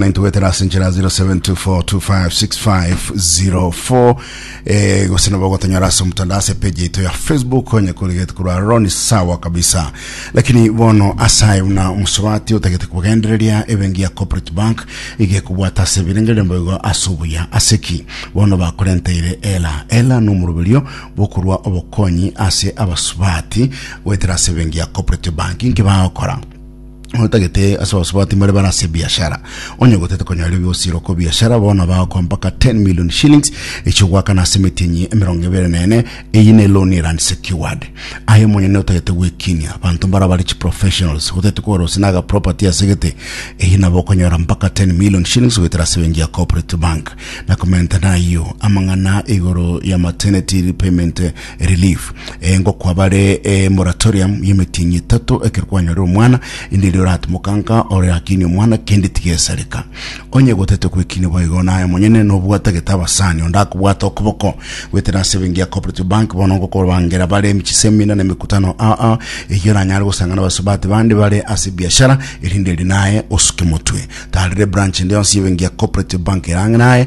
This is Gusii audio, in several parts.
na intugwetera ase enchera 0724256504 eh, gose nabo gotonyora ase omutandao ase page yaito ya facebook onye kurigete kurwa roni sawa kabisa lakini bono asaye buna omosobati otagete kugendereria ebengi ya corporate bank igekubwata ase ebirengererio mboigo ase obuya ase ki bono bakorenteire ela ela nomoruberio bokorwa obokonyi ase abasubati gwetera ase ebengi ya corporate bank inki bagokora otagete ase abasubati mbare bare ase ebiashara onye gotete konyoreria ebiosiro ko biashara bono bagokoa mpaka 10 million shillings echo gwakana ase emetinyi emerongo ebere na ene eyi ne loan ere unsecured aye monyene otagete gwekinia abanto mbare abare chi professionals gotete kogora gose naga property asegete eyi nabo okonyora mpaka 10 million shillings goetera ase bengi ya corporate bank na komenta nayo amang'ana igoro ya maternity repayment Relief, eh, ngokwa bare eh, moratorium y'emetienyi etato ekero kwanyore omwana inde erio oratomoka nka ore akini omwana kende tigesareka onye gotete kwekini boigo naye monyene nobwata gete abasani onde akobwata okoboko gwetera ase bengi ya cooperative bank bono ngokobangera bare emichisemina na emekutano aa eyo oranyare gosangana basubati bande bare ase biashara erinde eri naye osuke motwe tarire branch ende yonsi y'ebengi ya cooperative bank erang'e naye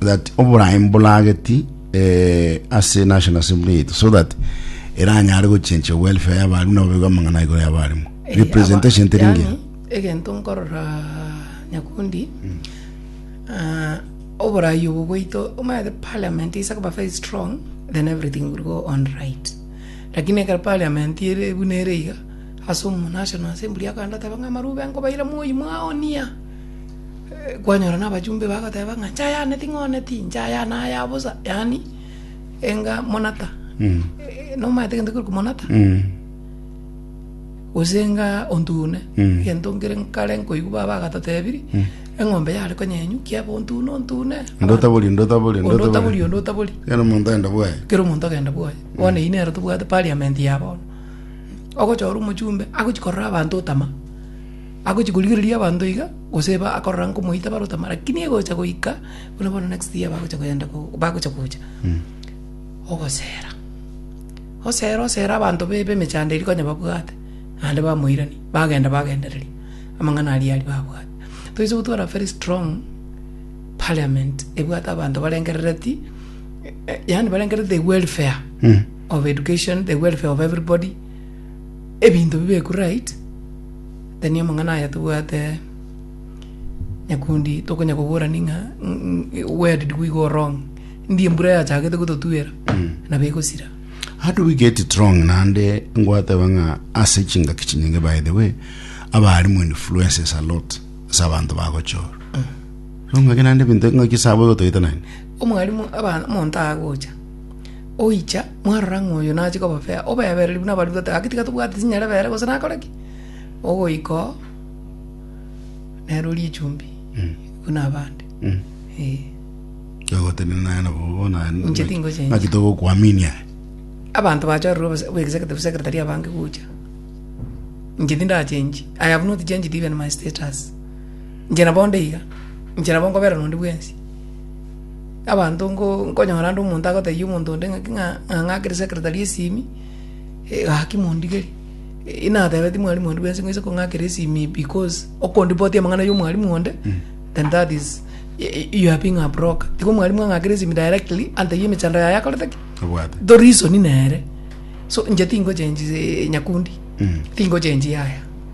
that oboraim borageti eh, ase national assembly yetu so that eranyare gochencha welfare y'abarimu nabo baigo amang'ana igoro y'abarimu Eh, representation aba- teri yaani, engiya egento nkorora nyakundi ah, oborai obo bwaito omanyete parliament isa koba very strong then everything will go on right lakini ekero parliament ere buna ere iga ase omo national assembly akanda teba ng'a amarube nkobaira moi mwaonia kwanyora nabachumba bagoteba ng'a inche ayane ting'ooneti, inche ayane aya bosa, yaani enga monata nomanyete egento kekorokwa monata? Gose enga ontune, egento nkere nkare nkoigwa baba agatotebirie, eng'ombe yare konyenywa, kiaba ontune ontune, Onde otabori, onde otabori, onde onde otabori. otabori, onde otabori, Kera omonto agenda bwaye. kera omonto agenda bwaye. Bono eyio nero tobwate parliament ya bono, ogochora omochumbe agochia korora abanto otama. Agochia korigereria abanto iga, gose ba akorora nkomoita barotama, rakini egocha goika buna bono next year bagocha kogenda ko bagocha gocha. Ogosera, osera osera abanto be b'emechando eria konya babwate, naende bamoirani, bagenda bagendereria amang'ana aria aria babwate. Toise gotwara very strong parliament ebwate abanto barengerereti yaani barengereti the welfare of education, the welfare of everybody. Ebinto bibekwe right then amang'ana aya tobwate nyakundi tokonya koborani ng'a ng- where did we go wrong ndi embura yachagete gototwera nabo egosira How do we get it wrong? Nande ngwateba ng'a ase chingaki chinyinge by the way abalimu influences a lot ase abanto bagochora. Nong'ake nande ebinto ng'aki sabo igotoita nani? omwalimu aba- omonto agocha oicha mwarora ng'a oyo nache koba fair, obebereri buna abarwoti goteeba gaki tiga tobwate chinyarebere gose nakore ki, ogoika oo nere orie echumbi buna abande eh. Ogotebia naye nabo bobe naye Inche tingochenja. naki togokwaminia abanto bachorire obose- obe executive secretary abange gocha inche tindachenchi i have not changed even my status inche nabo onde iga inche nabo nkobererwa onde bwensi Abanto ngo nkonyora ande omonto agotebia omonto onde ng'aki ng'a ng'a akere secretary esimi, eh gaki mondigeri, eh natebeti mwalimu onde bwensi ng'oise kong'akera esimi because okondipotia amang'ana ya omwalimu onde, then that is y- you are being a broker. Igo omwalimu ang'akere esimi directly antebie emechando yaye akorete ki? Obwate. Ndo reason nere. So inche tingochengi nyakundi, tingochengi yaya.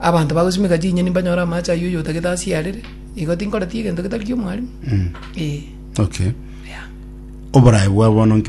Abanto bagosimeka chinyeni mbanyore amache ayio oyo otagete asiyarere, igo tinkoreti egento getari ki'omwarimu. Eh. Okay. Yeah. Oborae bwa bono nki